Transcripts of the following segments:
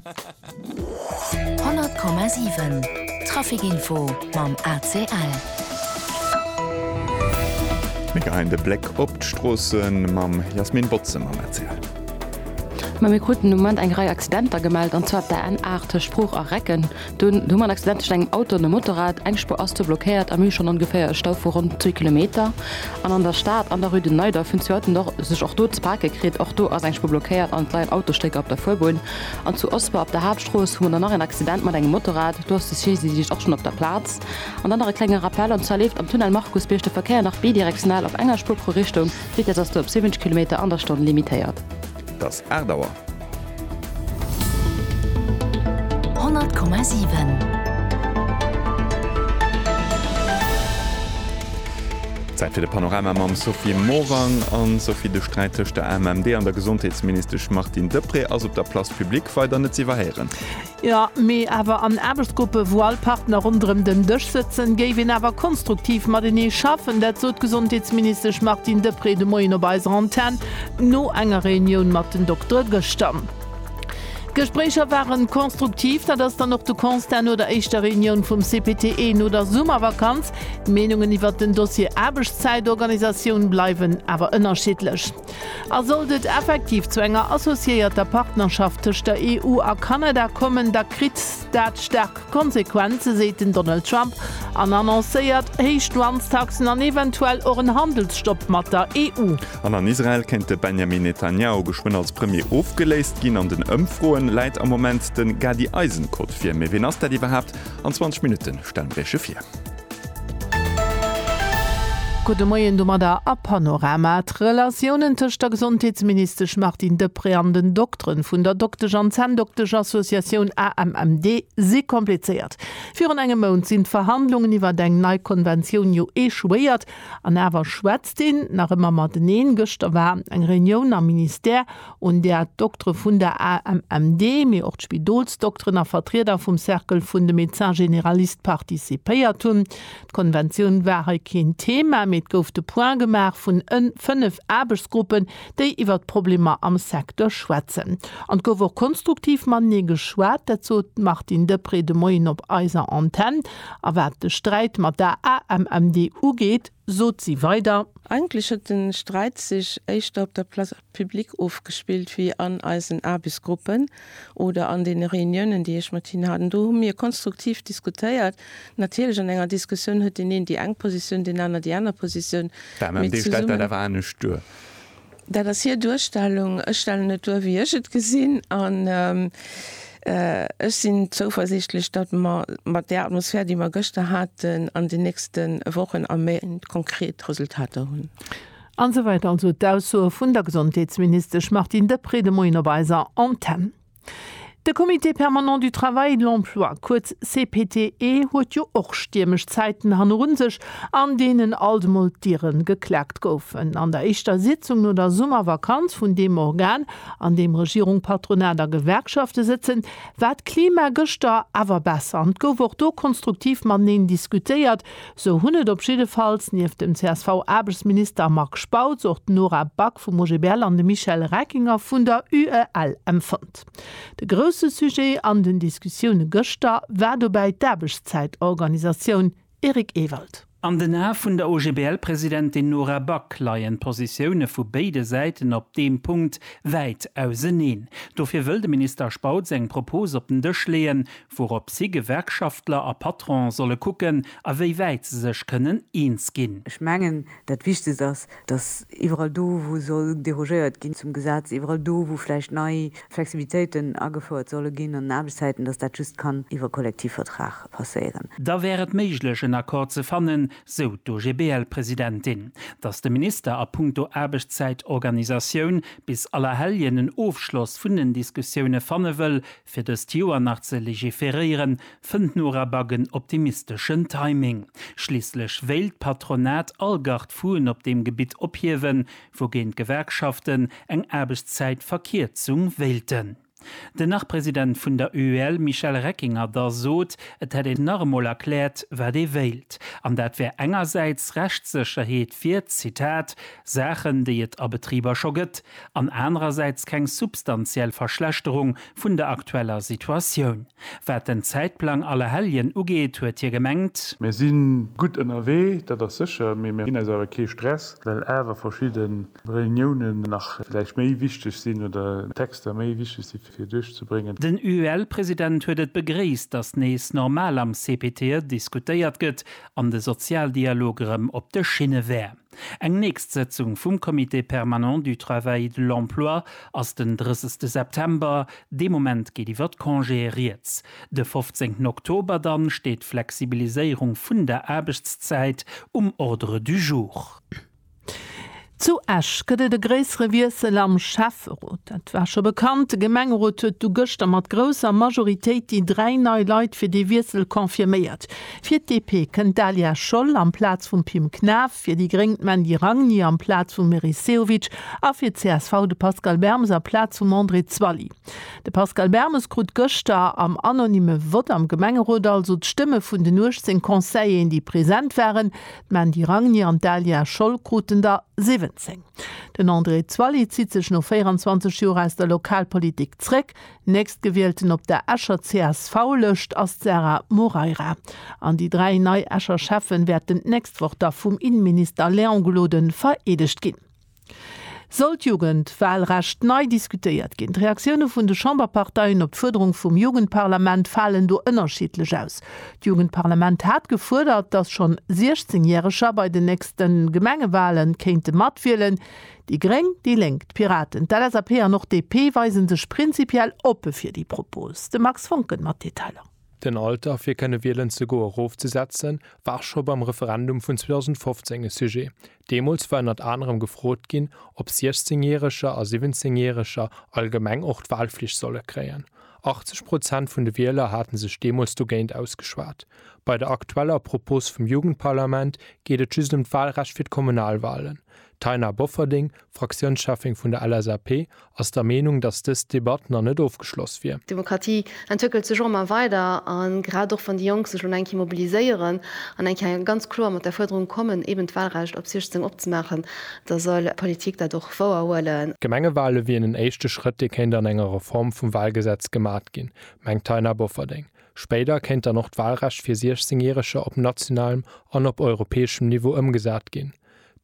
100,7 Trafic Info mam ACL. Mir geheien de Bléck op d'Stroossen mam Jasmin Botze mam ACL. Mir kruten um Moment eng Rei Accidenter gemellt, an zwar op der N8 tëscht Bruch a Recken. Dunn hu mer en Accident tëschent engem Auto an dem Motorrad. Eng Spuer ass do blockéiert a mir hu schonn ongeféier e Stau vu ronn zwee Kilometer. An an der Stad, an der Rue de Neidorf, hunn zwee Autoen och sech och do ze pake kritt. Och do ass eng Spuer blockéiert an et leien Autostécker op der Fuerbunn. An zu Osper op der Haaptstrooss hu mer dann nach een Accident mat engem Motorrad. Do ass de Saisie-Dienscht och schonn op der Plaz. An dann nach e klenge Rappel, an zwar leeft am Tunnel Markusbierg de Verkéier nach bidirektional op enger Spuer pro Richtung. D'Vitess ass do op 70 Kilometer an der Stonn limitéiert. 't ass 8 Auer. 100,7. Zäit fir de Panorama mam Sophie Morang. An Sophie, de Sträit tëscht der AMMD an der Gesondheetsministesch Martine Deprez ass op der Place publique weider net z'iwwerhéieren. Jo, mee awer an Aarbechtsgruppe wou all Partner ronderëm den Dësch sëtzen, géif een awer konstruktiv matenee schaffen. Dat sot d'Gesondheetsministesch Martine Deprez de Moien op eiser Antenn no enger Reunioun mat den Doktere gëschter. D'Gespréicher ware konstruktiv, dat ass dann och de Constat no der éischter Reunioun vum CPTE no der Summervakanz. D'Meenungen iwwert den Dossier Aarbechtszäitorganisatioun bleiwen awer ënnerschiddlech. A sollt et effektiv zu enger associéierter Partnerschaft tëscht der EU a Kanada kommen, da kritt dat staark Konsequenze, seet den Donald Trump an annoncéiert héich Douanestaxen an eventuell och en Handelsstopp mat der EU. An an Israel kéint de Benjamin Netanjahu geschwënn als Premier ofgeléist ginn. An den Ëmfroen läit am Moment de Gadi Eisenkot vir. Mee wien ass dat iwwerhaapt? An 20 Minutte stellen mir Iech e vir. Gudde Moien domadder a Panorama. D'Relatiounen tëscht der Gesondheetsministesch Martine Deprez an den Dokteren vun der Doktesch an Zänndoktesch-Associatioun AMMD si komplizéiert. Virun engem Mount sinn d'Verhandlungen iwwert eng nei Konventioun jo echouéiert an awer schwätzt een nach ëmmer mateneen. Gëschter war eng Reunioun am Ministère, un där d'Doktere vun der AMMD, mee och d'Spidolsdokteren a Vertrieder vum Cercle vun de Médecins généralistes participéiert hunn. D'Konventioun war hei keen Thema, mee et gouf de Point gemaach vun ën fënnef Aarbechtsgruppen, déi iwwert d'Problemer am Secteur schwätzen. An et gouf och konstruktiv matenee geschwat, dat sot d'Martine Deprez de Moien op eiser Antenn. A wat de Sträit mat der AMMD ugeet, sot si weider. Eigentlech huet de Sträit sech éischter op der Place. Public ofgespillt wéi an eisen Aarbechtsgruppen oder an deene Reuniounen, déi ech mat hinnen hat. An do hu mir konstruktiv diskutéiert. Natierlech, an enger Diskussioun huet deen een déi eng Positioun, deen aner déi aner Positioun. D'AMMD stellt dat awer anescht duer. Dat ass hir Duerstellung. Ech stellen et duer, wéi ech et gesinn. An ech sinn zouversiichtlech, datt mer mat där Atmosphär, déi mer gëschter haten, an den nächste Wochen a Méint konkret Resultater hunn. An esou weider also d'Aussoe vun der Gesondheetsministesch Martine Deprez de Moien op eiser Antenn. De Comité permanent du travail et de l'emploi, kuerz CPTE, huet jo och stiermesch Zäiten han erun sech, an deenen alt emol d'Dieren geklaakt goufen. An der éischter Sitzung no der Summervakanz vun deem Organ, an deem Regierung, Patronat a Gewerkschafte sëtzen, war d'Klima gëschter awer besser an 't gouf och do konstruktiv mateneen diskutéiert, Sou hunn et op jiddefalls nieft dem CSV-Aarbechtsminister Marc Spautz och d'Nora Back vum OGBL an de Michel Reckinger vun der UEL empfonnt. De grousse Sujet an den Diskussioune gëschter war dobäi d'Aarbechtszäitorganisatioun. Eric Ewald. An den Ae vun der OGBL-Presidentin Nora Back leien d'Positioune vu béide Säiten op deem Punkt wäit auseneen. Dofir wëll de Minister Spautz eng Propos op den Dësch leeën, Wourop si, Gewerkschaftler a Patron, solle kucken, a wéi wäit se sech kënnen eens ginn. Ech mengen, dat Wichtegst ass, datt iwwerall do, wou soll derogéiert ginn zum Gesetz, iwwerall do, wou vläicht nei Flexibilitéiten agefouert solle ginn an den Aarbechtszäiten, datt dat just kann iwwer Kollektivvertrag passéieren. Da wär et méiglech, en Accord ze fannen, sou d'OGBL-Presidentin, datt de Minister a punkto Aarbechtszäitorganisatioun bis Allerhelljen en Ofschloss vun den Diskussioune fanne wëll, Fir dëst Joer nach ze legiferéieren, fënnt Norabag en optimisteschen Timing. Schliisslech wéilt d'Patronat all Gard-fou'en op deem Gebitt ophiewen, wougéint d'Gewerkschaften eng Aarbechtszäitverkierzung wéilten. Den Nach-President vun der UEL Michel Reckinger da sot, et hätt een nach emol erkläert, wat ee wéilt. An dat wär engersäits Rechtssécherheet fir, Zitat, Saachen, déi et a Betriber scho gëtt, an anerersäits keng substantiell Verschlechterung vun der aktueller Situatioun. Wat den Zäitplang Allerhelljen ugeet, huet hie gemengt. Mir si gutt ënnerwee, dat ass sécher, mee mir ginn eis awer kee Stress, well awer verschidde Reuniounen nach vläicht méi wichteg sinn oder Texter méi wichteg si fir duerchzebréngen. Den UEL-President huet et begréisst, datt nees normal am CPTE diskutéiert gëtt an de Sozialdialog erëm op de Schinne wär. Eng nächst Sëtzung vum Comité permanent du travail et de l'emploi ass den 30 September, dee Moment geet iwwer d'Congéë rieds. De 15 Oktober dann steet d'Flexibiliséierung vun der Aarbechtszäit um Ordre du jour. Zu Esch gëtt et e gréissere Wiessel am Schäfferot. Dat war scho bekannt. De Gemengerot huet du gëschter mat grousser Majoritéit déi dräi nei Leit fir dee Wiessel confirméiert. Fir d'DP kënnt d'Alia Scholl amplaz vum Pim Knaff, fir déi gréng d'Mandy Ragni amplaz vum Meris Sehovic a fir csv de Pascal Bermes amplaz vum André Zwally. De Pascal Bermes krut gëschter am anonymme Vott am Gemengerot also d'Stëmme vun den 18 Conseilleren, déi present waren. D'Mandy Ragni an d'Alia Scholl kruten der 17. Den André Zwally zitt sech no 24 Joer aus der Lokalpolitik zréck. Nächstgewielten op der Escher CSV-Lëscht ass d'Sarah Moreira. An déi dräi nei Escher Schäffe wäerten d'nächst Woch da vum Inneminister Léon Gloden vereedegt ginn. Soll d'Jugendwahlrecht nei diskutéiert ginn? D'Reaktioune vun de Chamberparteien op d'Fuerderung vum Jugendparlament falen do ënnerschiddlech aus. D'Jugendparlament hat gefuerdert, datt schonn 16 Järeger bei den nächste Gemengewale kéinte matwielen. Déi Gréng, déi Lénk, d'Piraten, d'LSAP an och DP weise sech prinzipiell oppe fir déi Propos. De Max Voncken mat Detailer. Den Alter fir kënne wielen ze goe rofzesetze war scho beim Referendum vun 2015 e Sujet. Deemools war ënnert anerem gefrot ginn, ob 16 Järeger a 17 Järeger allgemeng och d'Walflicht solle kréien. 80 Prozent vun de Wieler hate sech deemools dogéint ausgeschwat. Bei der aktueller Propos vum Jugendparlament geet et just ëm d'Walrecht fir d'Kommunalwalen. D'Taina Bofferding, Fraktiounscheffin vun der LSAP, ass der Meenung, datt dës Debatt nach net ofgeschloss wier. D'Demokratie entwéckelt sech och ëmmer weider a grad och wann déi Jonk sech lo eng Kéier mobiliséieren an eng Kéier ganz kloer mat der Fuerderung kommen, eben d'Wahlrecht op 16 opzemaachen, da soll d'Politik dat och wouer huelen. D'Gemengewale wieren en éischte Schrëtt, dee kéint an enger Reform vum Wahlgesetz gemat ginn, mengt d'Taina Bofferding. Spéider kéint dann och d'Wahlrecht fir 16 Järeger op nationalem an op europäeschem Niveau ëmgesat ginn.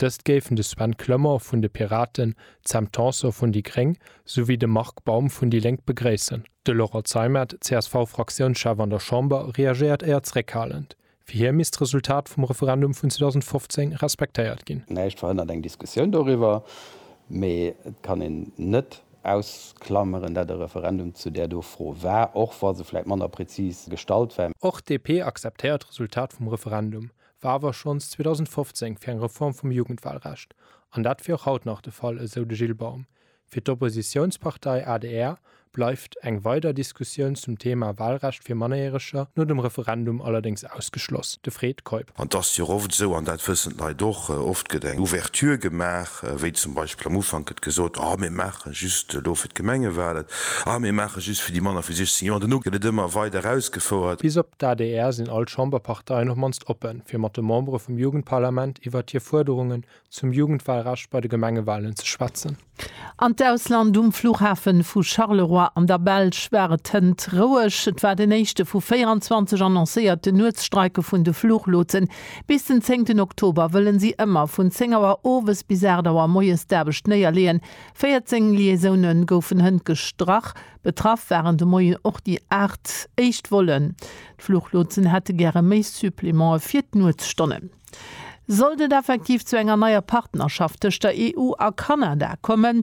Dëst géifen de Sven Clement vun de Piraten, d'Sam Tanson vun déi gréng souwéi de Marc Baum vun déi Lénk begréissen. De Laurent Zeimet, CSV-Fraktiounschef an der Chamber, reagéiert éier zréckhalend. Fir hie misst d'Resultat vum Referendum vun 2015 respektéiert ginn. Näischt verhënnert eng Diskussioun doriwwer, mee et kann een net ausklameren, dat e Referendum zu där do Fro war, och wa se vläit manner prezis gestallt war. Och d'DP akzeptéiert d'Resultat vum Referendum, war awer schonns 2015 fir eng Reform vum Jugendwahlrecht, an dat wier och haut nach de Fall, esou de Gilles Baum. Fir d'Oppositiounspartei adr bleift eng weider Diskussioun zum Thema Wahlrecht fir Mannerjäreger no dem Referendum allerdéngs ausgeschloss, de Fred Keup. An 't ass jo och oft esou, an dat wëssen d'Leit och, oft gëtt eng Ouverture gemaach, wéi zum Beispill am Ufank gëtt gesot, ah mir maache just elo fir d'Gemengewalen, ah mir maache just fir déi manner vu 16 Joer, an duerno gëtt et ëmmer weider erausgefouert. Bis op d'ADR sinn all d'Chamberparteien op mannst oppen, fir mat de Membere vum Jugendparlament iwwert hir Fuerderungen zum Jugendwalrecht bei de Gemengewalen ze schwätzen. An d'Ausland, Um Fluchhafe vu Charleroi an der Belsch war et hënt roueg. Et war den éischte vu 24 annoncéierte Nuetsstreike vun de Fluchlotsen. Bis den zéngten Oktober wëllen si ëmmer vun 10 Auer owes bis 8 Auer moies d'Aarbecht néierleeën. 14 Liaisoune goufen hënt gestrach. Betraff waren de Moien och déi 8 éischt Vollen. D'Fluchlotsen hätte gäre méi Supplemente fir d'Nuetsstonnen. Sollt et effektiv zu enger neier Partnerschaft tëscht der EU a Kanada kommen,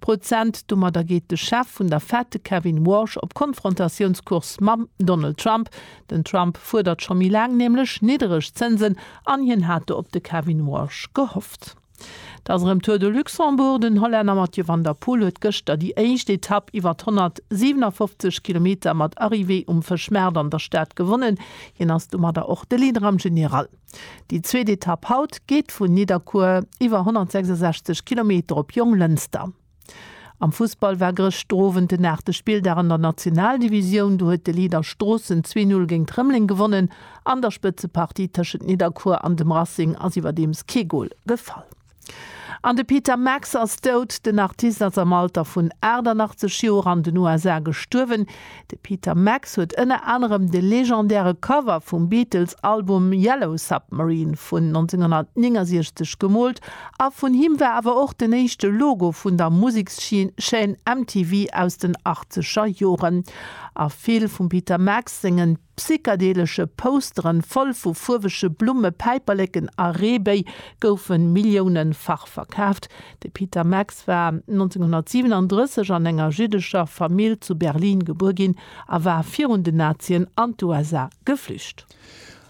Prozent. Domadder geet de Chef vun der Fed, de Kevin Warsh, op Konfrontatiounscourse mam Donald Trump. Den Trump fuerdert scho méi laang nämlech niddereg Zënsen an hien hat do op de Kevin Warsh gehofft. Dass erëm Tour de Luxembourg, Den Hollänner Mathieu van der Poel huet gëschter déi éischt Etapp iwwer 157 Kilometer mat Arrivée um Fëschmaart an der Stad gewonnen. Hien ass domadder och de Leader am General. Déi zweet Etapp haut geet vun Nidderkuer iwwer 166 Kilometer op Jonglënster. Am Fussball war gëscht d'Owend den aachte Spilldag an der Nationaldivisioun. Do huet de Leader Stroossen zwee Null géint Rëmleng gewonnen. An der Spëtzepartie tëschent Nidderkuer an dem Racing ass iwwerdeems kee Gol gefall. An de Peter Max ass dout. Den Artist ass am Alter vun 88 Joer an den USA gestuerwen. De Peter Max huet ënner anerem de legendäre Cover vum Beatles-Album Yellow Submarine vun 1969 gemoolt a vun him war awer och den éischte Logo vun der Musekschaîne MTV aus den Achtzeger Joren. A vill vum Peter Max sengen. Psychedelesche Posteren, voll vu fuerwege Blumme, Päiperleken a Reebéi goufe milliounefach verkaaft. De Peter Max war 1937 an enger jiddescher Famill zu Berlin gebuer ginn a war virun den Nazien an d'USA geflücht.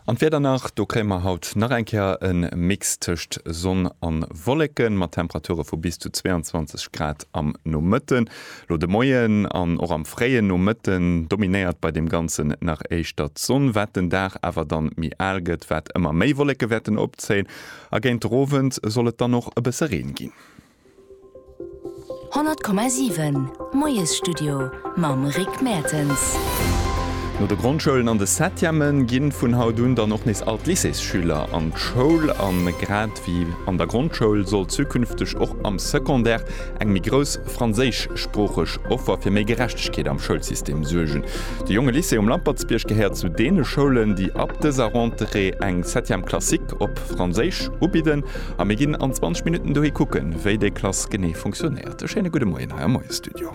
An d'Wieder nach, Do kréie mer haut nach eng Kéier e Mix tëscht Sonn a Wolleken, mat Temperature vu bis zu 22 Grad am Nomëtten. Lo de Moien an och am fréien Nomëtten dominéiert bei deem Ganzen nach éischter d'Sonn, wat den Dag awer dann méi al gëtt, wat ëmmer méi Wolleke wäerten opzéien a géint de Rowend soll et dann och e bësse Reen ginn. 100,7 Moiesstudio mam Rick Mertens. No de Grondschoulen an de Septième ginn vun haut un dann och nees all d'Lycéesschüler an d'Schoul. An grad wéi an der Grondschoul soll zukünfteg och am Secondaire Eng méi grouss franséischsproocheg Offer fir méi Gerechtegkeet am Schoulsystem suergen. De Jonge Lycée um Lampertsbierg gehéiert zu deene Schoulen, déi ab dëser Rentrée eng Septième classique op Franséisch ubidden a mir ginn an 20 Minutten dohi kucken, wéi déi Klass genee funktionéiert. E schéine gudde Moien hei am Moiesstudio.